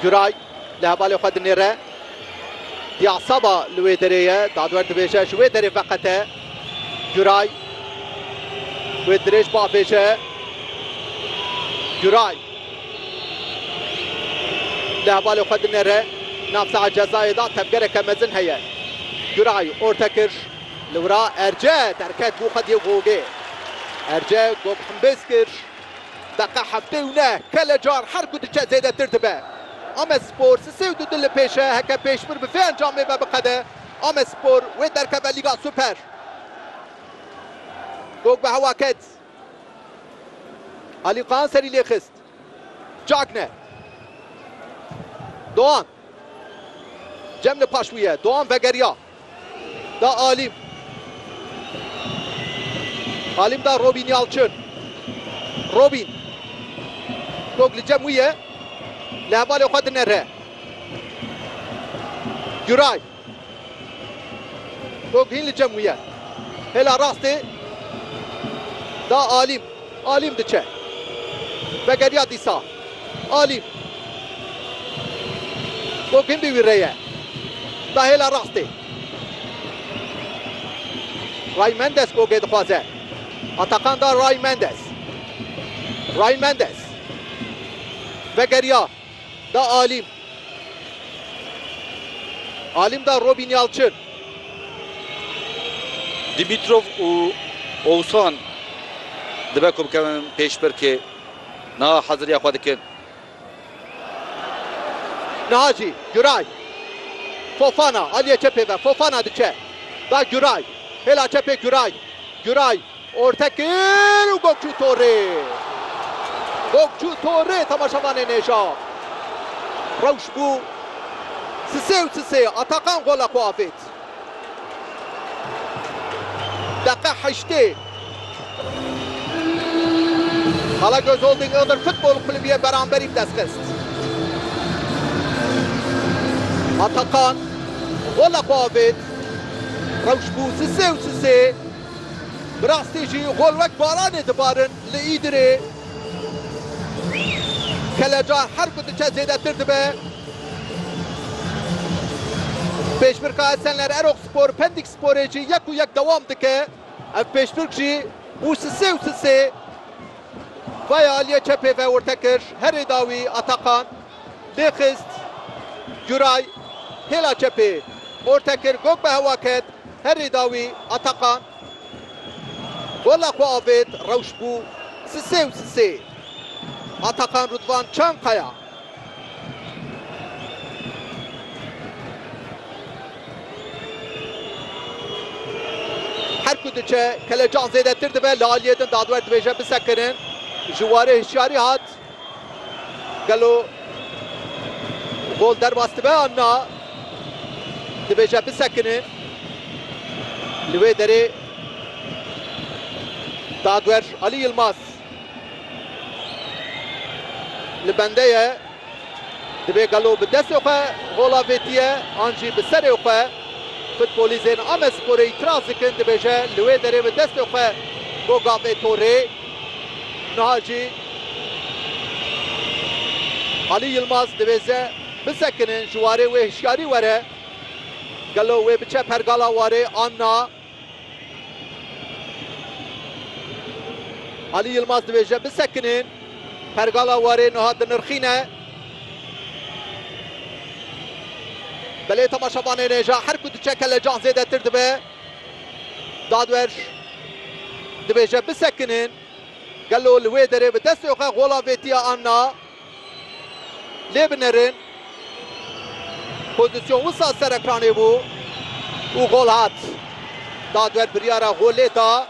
Guray li hevalê xwe dinêre. Diaksaba li wê derê ye. Dadwer dibêje ji wê derê veqete. Guray wê dirêj biavêje. Guray li hevalê xwe dinêre. Navsaha cezayê da tevgereke mezin heye. Guray orte kir. Li wira Erce derket bo xwe dê gogê. Erce gog himbêz kir. Deqa heftê û neh kele car her ku diçe zêdetir dibe. Amedspor si sê û du du li pêş e, heke pêşbir bi vê encamê ve biqede, Amedspor wê derkeve Lîga Super. Gog bi hewa ket. Alî Kaan serî lê xist. Cagne. Doğan. Cem li paş wî ye. Doğan vegeriya. da Alim. Alim da Robîn Yalçin. Robîn. Top li cem wî ye. Li hevalê xwe dinere. Güray. Top hîn li cem wî ye. Hêla rastê da Alim. Alîm diçe. Vegeriya dîsa. Alîm. Bo gundî wî re ye. Da hêla rastê. Ray Mendes gogê dixwaze. Atakan da Ray Mendes. Ray Mendes. Vegeriya. Da Alim. Alim da Robîn Yalçin. Dimitrov û Owsan dibe ku bikevin pêşbirkê. Niha heziriya xwe dikin. Niha jî Guray. Fofana aliyê çepê ve. Fofana diçe. Da Guray. Hêla çepê Guray. Guray. Orta kir û Gokçû Torê. Gokçû Torê temaşevanê nêja. Rewş bû sisê û sisê Atakan gola xwe avêt. Deqe heştê. Kalagöz Holding Iğdır Futbol Kulübü yê beramberî bi dest xist. Atakan gola xwe avêt. Rewş bû sisê û sisê. Bi rastî jî gol wek baranê dibarin li Îdirê. Kelecar her ku diçe zêdetir dibe. Pêşbirka Esenler Erokspor Pendik Sporê jî yek û yek dewam dike. Ev pêşbirk jî bû sisê û sisê. Vaya aliyê çepê ve orte kir herê da wî Atakan. Bê xist Guray hêla çepê orte kir gok bi hewa ket herî dawî Atakan gola xwe avêt rewş bû sisê û sisê Atakan Rûdvan Çankaya. Her ku diçe kelecan zêdetir dibe li aliyê din dadwer dibêje bisekirin ji warê hişyarî hat. Gelo gol derbas dibe an na? Dibêje bisekinin. Li wê derê dagwer Alî Yilmaz li bende ye. Divê gelo bi destê xwe gola vêtiye an jî bi serê xwe? Futbolîzên Amedsporê îtiraz dikin, dibêje li wê derê bi destê xwe goga vê torê. Niha jî Alî Yilmaz dibêze bisekinin ji warê wê hişyarî were. Gelo wê biçe pergala warê an na? Alî Yilmaz dibêje bisekinin, pergala warê niha dinirxîne. Belê temaşevanê nêja her ku diçe kelecan zêdetir dibe. Dadwer dibêje bisekinin. Gelo li wê derê bi destê xwe gola vê tiya an na? Lê binerin pozîsyon wisa ser ekranê bû û gol hat. Dadwer biryara golê da.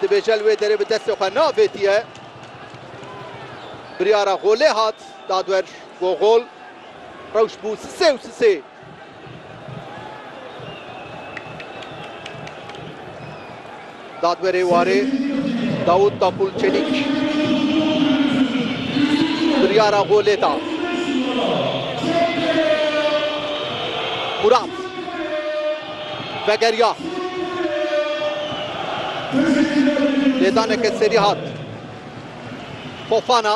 Dibêje li wê derê bi destê xwe na vê tiye. Biryara golê hat. Dadwer go gol. Rewşt bû sisê û sisê. Dadwerê warê Dawût Tapûl Çelîk biryara golê da. Murat vegeriya. Lêdaneke serî hat Fofana.